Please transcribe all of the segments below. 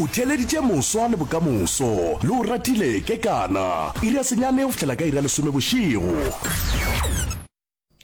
O theeleditše moswa le bokamoso, le o ratile kekana. Iri ya senyane go fihlela ka iri ya lesome bošego.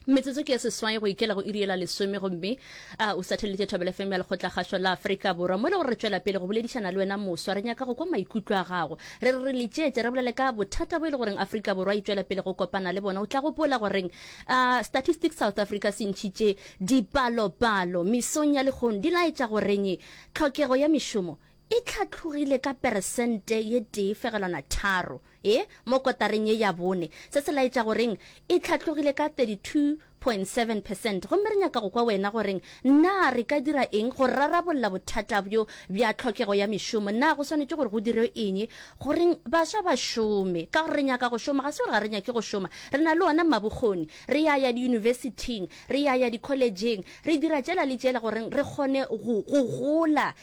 Metsotso ke ye seswai go ikela go iri ye la lesome, gomme A o sateletse Thobela FM ya Lekgotlakgašo la Afrika Borwa. Mo le gore re tšwela pele go boledišana le wena moswa, re nyaka go kwa maikutlo a gago. Re re re letšetše, re bolele ka bothata bo e le goreng Afrika Borwa e tšwela pele go kopana le bona. O tla gopola goreng a Statistics South Africa se ntšhitše dipalopalo mesong ya lekgono di laetša goreng tlhokego ya mešomo e tlhatlhogile ka peresente ye tee fegelwana tharo e mo kotareng ye ya bone, se se laetša goreng e tlhatlhogile ka 32.7 percent. Gomme re nyaka go kwa wena goreng na re ka dira eng go rarabolla bothata bjo bja tlhokego ya mešomo. Na go swanetše gore go dirwe eng goreng baswa ba šome? Ka gore re nyaka go šoma, ga se gore ga re nyake go šoma. Re na le ona mabokgoni, re ya ya diyunibesithing, re ya ya dikholejeng, re dira tšela le tšela goreng re kgone go, go gola.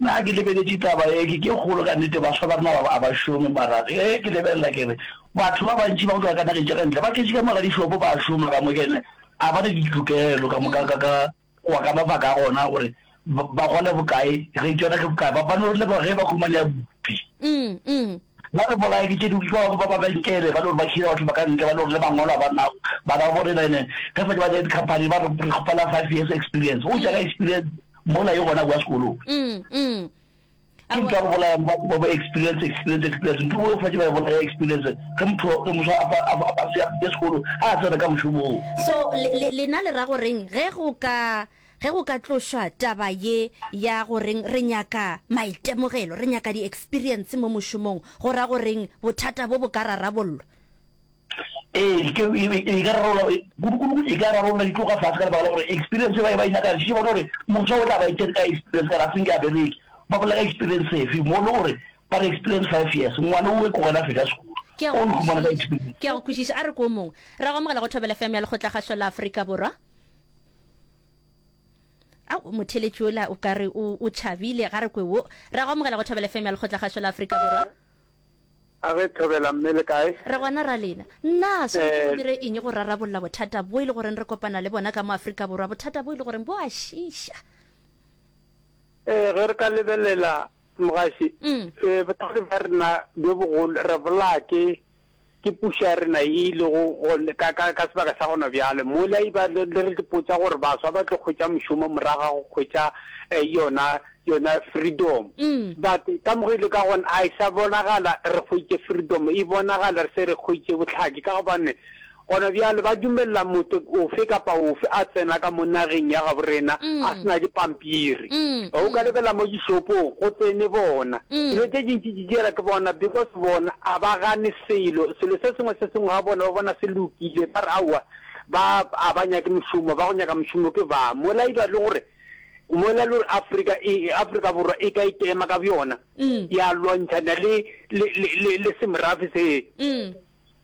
Na ke lebeletše taba ye ke ke kgolo? Ka nnete, bafsa ba rena a ba šome. Mara ge ke lebelela, ke re, Batho ba bantši ba go tloga ka nageng tša ka ntle ba tletše ka mo ga dišopo, ba a šoma ka mo, kene a ba na ditokelo ka moka ka ka go wa ka mabaka a gona gore ba gole bokae, ge tšona ke bokae, ba ba no re leboga ge ba humanea bupi. Ba re bolaye ke tše dingwe, ke ba ba ba benkele ba no ba hira batho ba ka ntle ba no re le mangwalo a ba nago, ba ba borena ene ge ba di company ba re re kgopela five years experience. O tšwa ka experience? mola e gona kwa sekolong mm, mm. ke ntwa go bolaya ba ba experience experience experience ntho o fa ba bolaya experience ke motho ke motho a ba a se ya sekolo a tsena ka moshomo o so lena le ra go reng ge go ka ge go ka tlošwa taba ye ya go reng re nyaka maitemogelo re nyaka di experience mo moshomong go ra go reng bothata bo bo ka rarabollo Ee, e ka rarola, kudukudu e ka rarola di tloga fase ka lebaka la gore experience e ba e ba e nyaka re bona gore moswa o tla ba itse ka experience kana a senke a bereke ba bolela ka experience efe mo le gore ba re experience five years ngwana o e ko gona feta sekolo Ke a go o fumana ka kwešiša. experience Ke a go kwešiša. A re ko o mongwe. Ra go amogela go Thobela FM ya Lekgotlakgašo la Afrika Borwa. Au, motheletši ola o ka re o, o tšhabile. Ga re kwe wo. Ra go amogela go Thobela FM ya Lekgotlakgašo la Afrika Borwa. A re thobela mme le kae? Re gona Ralena. Na swanetše re dire eng go rarabolla bothata bwo e le goreng re kopana le bona ka mo Afrika Borwa, bothata bwo e le goreng bo a šiiša? Ee, ge re ka lebelela, mogaši, bothata bja rena bjo bogolo re bolaya ke Ke pušo ya rena ye e lego gona ka, ka, ka sebaka sa gona bjale. Mola e ba le, le re ipotsa gore baswa ba tlo hwetša mošomo morago ga go hwetša eh, yona, yona freedom. But ka mo re le ka gona, a e sa bonagala re hwetše freedom, e bonagala re se re hwetše bohlatse. Ka gobane gona bjale ba dumelela motho ofe kapa ofe a tsena ka mo nageng ya gabo rena a se na dipampiri. O ka lebella mo dishopong go tsene bona. Dilo tše dintši Jere ke bona because bona a ba gane selo selo se sengwe se sengwe ga bona ba bona se lokile ba re aowa ba a ba nyake mošomo ba go nyaka mošomo ke ba mola e ba le gore mola le gore Africa e Africa borwa e ka ikema ka bjona mm. ya lwantšhana le le le le semrafe se mm.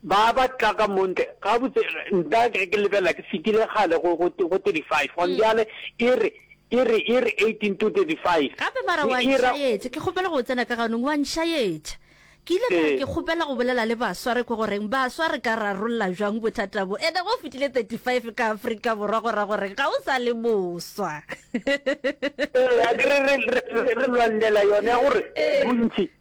Ba ba tla ka mo ntle, gabotse nna ke ge ke lebelela ke fetile kgale go, go, go 35, gone bjale e re, e re, e re 18 to 35. Gape ba re, Wa E ra, nšaetša, ke kgopela go tsena ka ganong, wa nšaetša. Ke ile ka re, Ke kgopela go bolela le baswa, re kwe goreng, Baswa, re ka rarolla bjang bothata bo? Ene ge o fetile 35 ka Afrika Borwa, go ra gore ga o sa le moswa. Eya, ke re, re, re, re, re lwanelela yona ya gore bontši.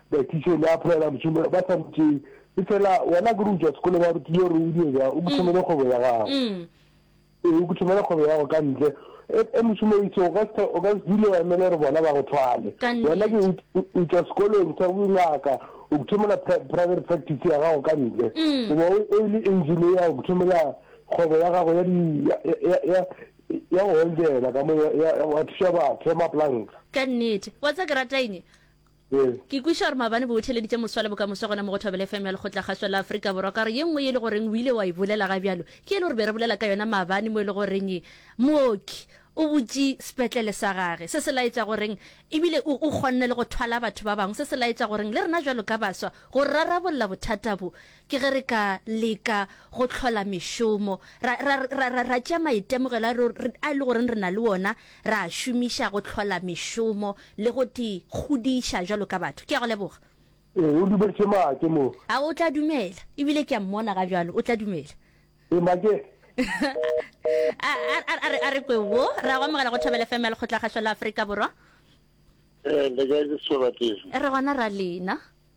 Baitiše le apolela mošomo ba sa mo tšee. Efela wena ke re o tšwa sekolong wa rutiwa gore o dire bjang, o ke thomele kgwebo ya gago. Ee, o ke thomele kgwebo ya gago ka ntle. E, e mošomo o itse o ka se o ka se dule wa emele gore bona ba go thwale. Ka nnete. Wena ke o- o- o tšwa sekolong sa bongaka, o ke thomela pri- private practice ya gago ka ntle. O ba o o le engineer, o ke thomela kgwebo ya gago ya di ya ya ya ya go weldela ka mo ya ya- ya- wa thuša batho ya maplanka. Ka nnete. Wa tsa ke rata eng? Ke kweša gore maabane bo wetheleditše moswa le bokamoso gona mo go Thobela FM ya Lekgotla-kgašwa la Afrika Borwa. Ka gore ye nngwe ye e le goreng o ile wa e bolela ga bjalo ke yele gore be re bolela ka yona maabane mo e le goreng mooki o butše sepetlele sa gage. Se se laetša goreng e bile o kgonne le go thwala batho ba bangwe. Se se laetša goreng le rena bjalo ka baswa go rarabolla bothata bo Ke ge re ka leka go hlola mešomo, ra, ra, ra, ra, ra tšea maitemogelo a, re, re, a e le goreng re na le wona, ra a šomiša go hlola mešomo le go te kgodiša bjalo ka batho. Ke a go leboga. Ee, o dumetše maake mo. A o tla dumela? Ebile ke a mmona ga bjalo. O tla dumela? Ee, maake. A, a, a, a re, a re kwe wo. Re a go amogela go Thobela FM ya Lekgotlakgašo la Afrika Borwa. Ee, le kae, ke Setswalatefi. Re gona ra lena.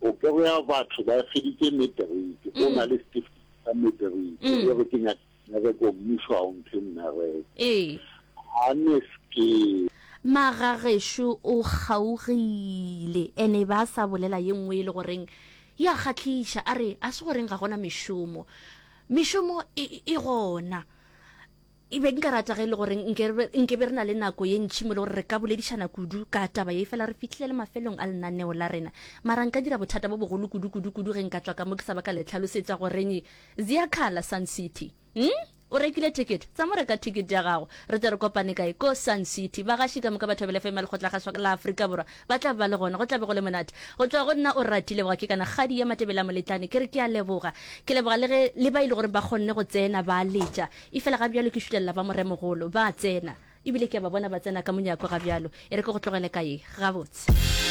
Popego ya batho ba e feditše materiki, go na le setifikeiti sa materiki, e re ke nyaka mmereko, mmušo ga o mphe mmereko. Ga ne ske. Magagešo o kgaogile and e be a sa bolela ye nngwe e le goreng e a kgahliša, a re, Ga se goreng ga go na mešomo. Mešomo e gona. E be nka rata ge e le gore nke, nke be re na le nako ye ntši mo le gore re ka boledišana kudu ka taba ye, efela re fihlile le mafelong a lenaneo la rena. Mara nka dira bothata bo bogolo kudu, kudu, kudu ge nka tšwa ka mo ke sa ba ka le hlalosetša goreng Ziyakhala, Sun City. Umm? O rekile ticket? Tsa mo reka ticket ya gago. Re tle re kopane kae? Ko Sun City. Bagaši ka moka ba Thobela FM ya Lekgotlagaswa la Afrika Borwa ba tla ba le gona. Go tla be go le monate. Go tšwa go nna Orati Leboga ke kana kgadi ya Matebele a Moletlane ke re ke a leboga. Ke leboga le ge, le ba e le goreng ba kgonne go tsena ba letša. Efela ga bjalo ke šutelela ba moremogolo. Ba a tsena. E bile ke a ba bona ba tsena ka monyako ga bjalo. E re ke go tlogele ka ye. Gabotse.